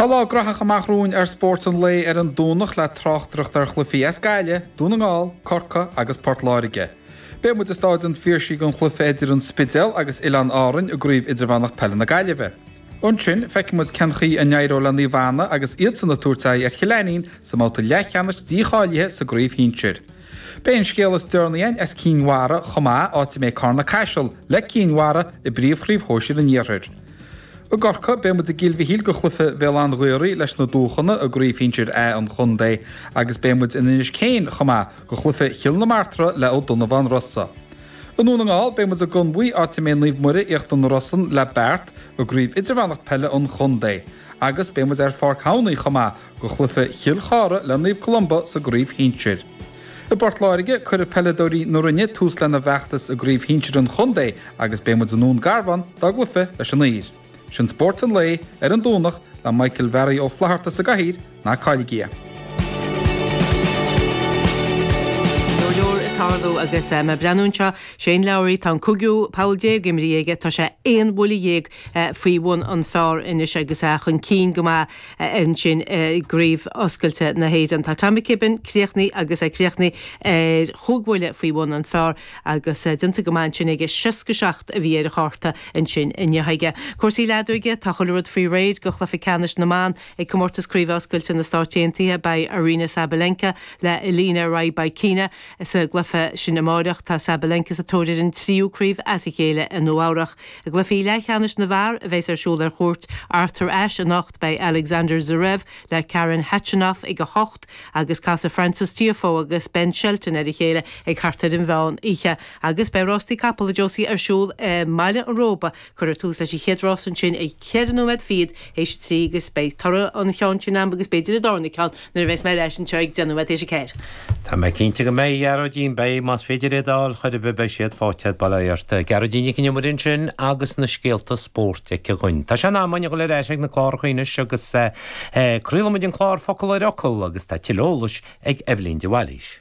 Tá lá graitheach amach romhainn ar Spórt an Lae ar an Domhnach le tráchtaireacht ar chluichí as Gaillimh, Dún na nGall, Corcaigh agus Port Láirge. Beidh muid i Stáid an Phiarsaigh don chluiche idir an Spidéal agus Oileáin Árainn i gCraobh Idirmheánach Peile na Gaillimhe. Ansin, feicfidh muid cén chaoi a n-éireoidh le Naomh Anna agus iadsan ag tabhairt aghaidh ar Chill Ainnín sa mbabhta leathcheannais dícháilithe sa gCraobh Shinsir. Beidh an scéal is deireanaí againn as Cinn Mhara chomh maith, áit a mbeidh Carna Caiseal, le Cinn Mhara, i bpríomhchraobh shóisir an iarthair. I gCorcaigh, beidh muid i gCill Mhichíl do chluiche Bhéal Átha an Ghaorthaidh leis na Dúchonnaigh i gCraobh shinsir A an chontae agus beidh muid in Inis Céin chomh maith do chluiche Chill na Martra le Ó Donnabháin Rossa. I nDún na nGall, beidh muid i gConmhaigh, áit a mbeidh Naomh Muire, Íochtar na Rosann, le Beart i gCraobh Idirmheánach Peile an chontae agus beidh muid ar Pháirc Thamhnaigh chomh maith, do chluiche Chill Chartha le Naomh Columba sa gcraobh shinsir. I bPort Láirge, cuirfidh peileadóirí na Rinne tús lena bhfeachtas i gcraobh shinsir an chontae agus beidh muid i nDún Garbhán dá gcluife leis an Uidhir. Sin Spórt an Lae ar an Domhnach le Michael Bharry Ó Flatharta sa gcathaoir, ná cailligí é! Go leor ag tarlú agus mé ag breathnú anseo, Shane Lowry, tá an cúigiú poll déag imithe aige, tá sé aon bhuille dhéag faoi bhun an phár anois agus é chun cinn go maith. ansin i gcraobh oscailte na hÉireann. Tá Tom McKibbin críochnaithe agus é críochnaithe ar chúig bhuille faoi bhun an phár agus déanta go maith ansin aige. Seasca seacht a bhí ar an chárta ansin inniu aige. Cúrsaí leadóige Tá chuile rud faoi réir do chluiche ceannais na mban ag Comórtas Craoibhe Oscailte na Stáit Aontaithe. Beidh Aryna Sabalenka le Elena Rybakina sa gcluiche sin amáireach. Tá Sabalenka sa tóir ar an tríú craobh as a chéile i Nua-Eabhrac. I gcluichí leathcheannais na bhfear, a bheas ar siúl ar chúirt Arthur Ashe anocht, beidh Alexander Zverev le Karen Khachanov ag a hocht agus casfaidh Frances Tiafoe agus Ben Shelton ar a chéile ag thart ar an mheán oíche agus beidh rástaí capall, a Josie, ar siúl i mBaile an Róba. Cuirfear tús leis an chéad rás ansin ag ceithre nóiméad fichead théis a trí agus beidh toradh an cheann sin agam agus b'fhéidir an darna ceann. Nuair a bheas mé ar ais anseo ag deich nóiméad théis a ceathair. Tá mé cinnte go mbeidh Gearóidín, beidh, más féidir é d'fháil chor ar bith, beidh siad faighte agat, bail ó Dhia ort. Gearóidín Nic an Iomaire ansin agus na scéalta spóirt aici dhúinn. Tá sé in am againn a dhul ar ais ag na cláracha anois agus craolfaimid an clár Focal ar Fhocal agus tá tuilleadh eolais ag Eibhlín de Bhailís.